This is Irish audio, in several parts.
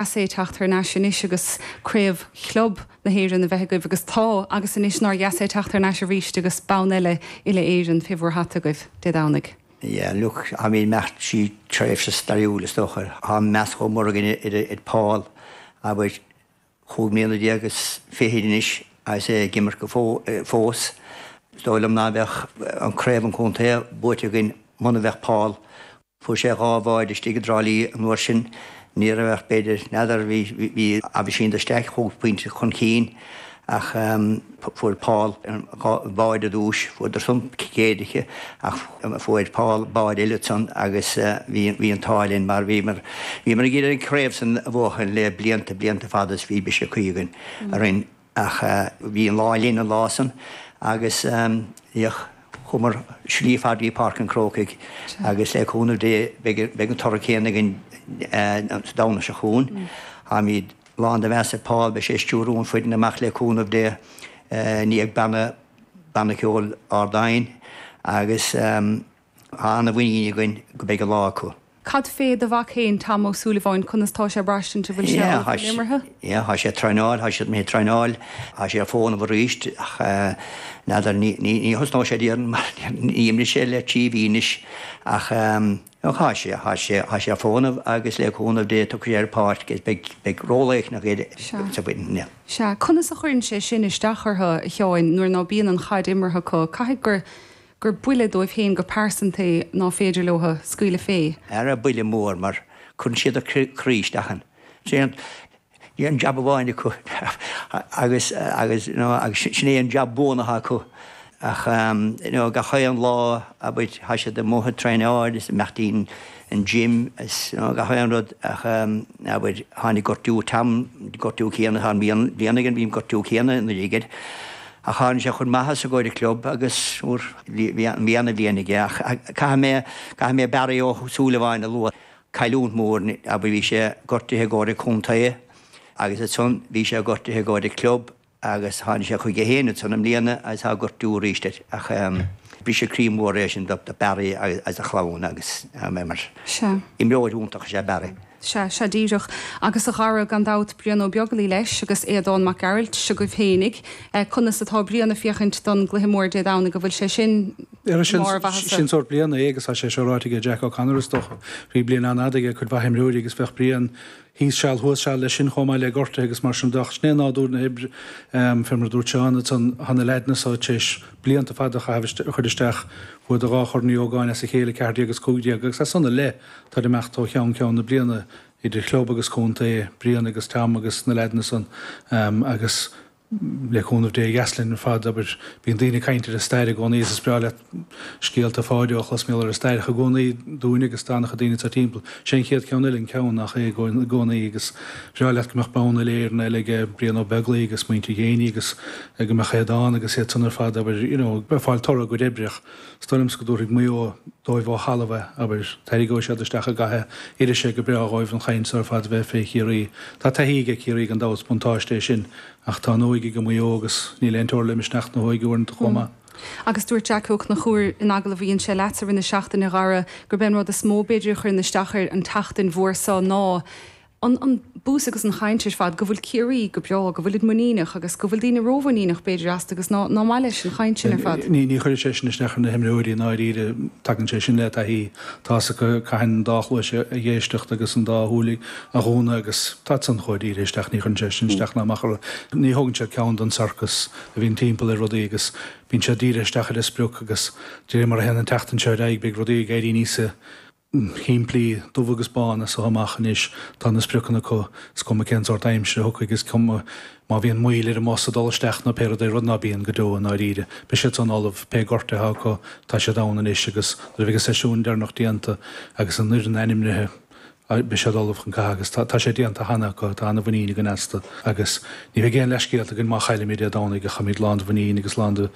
Is é teacht thar n-ais anois agus craobh chlub na hÉireann a bheith agaibh agus tá agus anois nár dheas é teacht thar n-ais arís agus bonn eile uile Éireann fé bhur hata agaibh Dé Domhnaigh. Yeah look I mean bheadh sí tréimhse stairiúil is dócha tá meas chomh mór againn ar ar Paul abair cúig mbliana déag is fichid anois agus é ag imirt fós is dóigh liom ná beadh an craobh an contae buaite againn muna bheadh Paul Fuair sé dhá bháide istigh i dTrá Lí an uair sin. Ní raibh ach b'fhéidir n'fheadar, bhí Aibhistín de Staic cúig pointe chun cinn ach fuair Paul an báide ar dtúis, fuair do Trump céaduaiche ach fuair Paul báide eile ansan agus bhí an t-ádh linn mar bhí mar bhíomar ag iarraidh an craobh san a bhuachan le blianta, blianta fada is bhí briseadh croí againn araon. Ach bhí an lá linn an lá san agus bhíodh, chuamar slí fada dtí Páirc an Crócaigh agus le cúnamh Dé beidh an toradh céanna againn an Domhnach seo chugainn. Táimíd lán de mheas ar Paul, beidh sé ag stiúrú an foireann amach le cúnamh Dé, i ndiaidh banna ceoil Ard Aidhin agus. Tá ana mhuinín againn go beidh an lá acu. Cad fé do mhac fhéin, Tom Ó Súilleabháin, conas tá sé braistint an bhfuil sé ullamh chun imeartha? Yeah, tá sé ag traenáil, tá sé ag traenáil, tá sé ar fónamh arís ach n'fheadar, ní thosnóidh sé déarfainn mar níor imir sé le trí mhí anois ach tá sé, tá sé, tá sé ar fónamh agus le cúnamh Dé tiocfaidh sé ar an pháirc agus beidh ról éicneach aige sa bhfoireann, yeah. Sea, conas a chuireann sé sin isteach orthu, a Sheáin, nuair ná bíonn an chaid imeartha acu, caithfidh gur, gur buille dóibh féin go pearsanta é ná féidir leo a scaoileadh fé. Ara buille mór mar cuireann siad a gcroí isteach ann. Sin é an an jab amháin acu agus agus you know agus sin é an jab buan athá acu ach you know gach aon lá abair thá siad amuigh a' traenáil is imeacht dtí'n an gym is you know gach aon rud ach abair tháinig gortú Tom gortú céanna atá i mbliana aige bhí an gortú céanna anuraidh air. Ach tháinig sé chun maitheasa i gcóir an club agus eh bhí ana bhliain aige. Ach caithfidh mé caithfidh mé Barry Ó Súilleabháin a lua. Cailliúnt mór abair bhí sé gortuithe i gcóir an contae agus ansan bhí sé gortuithe i gcóir an club agus tháinig sé chuige fhéin ansan i mbliana agus tá gortú arís air. Ach ehm briseadh croí mór é sin do Barry agus a chlann agus ehm imreoir iontach is é Barry. Sea, sea díreach. Agus a Dhara gan dabht Brian Ó Beaglaoi leis agus Aodán Mac Gearailt seo agaibh féinig. Conas atá Brian ag féachaint don gcluiche mór Dé Domhnaigh? An bhfuil sé sin i mbarr a mhaitheasa? Sin sórt bliana é agus tá sé seo ráite aige Jack O'Connor is dócha. Bhí bliain an-fhada aige ag cuid mhaith imreoirí agus bheadh Brian thíos seal thuas seal leis sin chomh maith le gortuithe agus mar sin de ach sin é nádúr na hoibre. Fé mar a dúirt Seán ansan tá na leaideanna so tar éis blianta fada a chaitheamh a chur isteach bhuadar dhá Chorn Uí Ógáin as a chéile, 14 agus 15, agus as san i leith. Táid ag imeacht ó cheann ceann na bliana idir chlub agus contae, Brian agus Tom agus na leaideanna san agus le cúnamh Dé b'dheas linn ar fad, abair. Bíonn daoine ag caint ar an stair i gcónaí agus is breá leat scéalta Pháideo a chlos, maíomh ar an stair ach i gcónaí dúinn agus an dá chéad duine sa timpeall. Sé an chéad ceann eile an ceann nach é i gcónaí agus bhreá leat go mbeadh bonn uile Éireann eile ag Brian Ó Beaglaoi agus muintir Ghéiní agus go mbeadh Aodán agus iad san ar fad, abair, you know, ag fáil toradh a gcuid oibreach. Is dóigh liomsa go dtabharfaidh Maigh Eo dóibh ó thalamh é, abair. Tarraingeoidh siad isteach i gcath, oirfidh sé go breá dhóibh an chaint so ar fad a bheith fé Chiarraí. Tá taithí aige Ciarraí gan dabht, buntáiste é sin, ach tá an óige ag Maigh Eo agus níl aon teora le misneach na hóige uaireanta chomh maith. Agus dúirt Jack Ó Conchúir in agallamh a dhein sé leatsa i rith na seachtaine, a Dhara, gurb é an rud is mó b'fhéidir a chuireann isteach air an tseachtain mhór so ná an an buzz agus an chaint ar fad go bhfuil Ciarraí go breá, go bhfuilid muiníneach agus go bhfuil daoine rómhuiníneach b'fhéidir astu agus ná ná maith leis an chaint sin ar fad. Ní chuireann sé sin isteach ar na himreoirí i ndáiríre, tagann sé sin le taithí. Tá a fhios acu cathain an dá chluais a dh'éisteacht agus an dá shúil a dhúnadh agus táid san chomh dírithe isteach, ní chuireann sé sin isteach ná amach orthu. Ní thógann siad ceann don sorcas a bhíonn timpeall ar rudaí agus bíonn siad dírithe isteach ar a sprioc agus de réir mar a théann an tseachtain seo ar aghaidh beidh rudaí ag éirí níos simplí, dubh agus bán, as seo amach anois tá na spriocanna acu, is cuma cén sórt aimsire a thiocfaidh, is cuma má bhíonn moill ar an mbus ag dul isteach nó pé rud é, rud ná bíonn go deo i ndáiríre. Beidh siad san ullamh, pé gortú athá acu tá siad ann anois agus nuair a bheidh an seisiún deireanach déanta agus an fhoireann ainmnithe beidh siad ullamh chun catha agus tá sé déanta cheana acu, tá an-mhuinín againn astu agus ní bheidh aon leathscéalta againn má chaillimid Dé Domhnaigh ach táimid lán de mhuinín agus lán de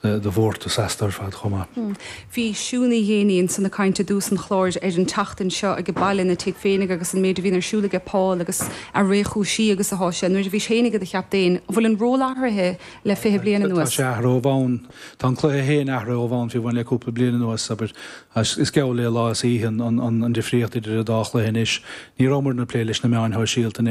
mhórtas astu ar fad chomh maith. Bhí Siún Uí Ghéibheannaigh ansan ag caint i dtús an chláir ar an tseachtain seo aige baile ina tigh féinig agus an méid a bhíonn ar siúl aige Paul agus a réchúisí agus atá sé nuair a bhís féinig id chaptaen. An bhfuil an ról athraithe le fiche bliain anuas? Tá sé athraithe ó bhonn. Tá an cluiche féin athraithe ó bhonn fiú amháin le cúpla bliain anuas, abair. Is geall le lá is oíche an difríocht idir an dá chluiche anois. Ní rabhamar ag plé leis na meáin shóisialta in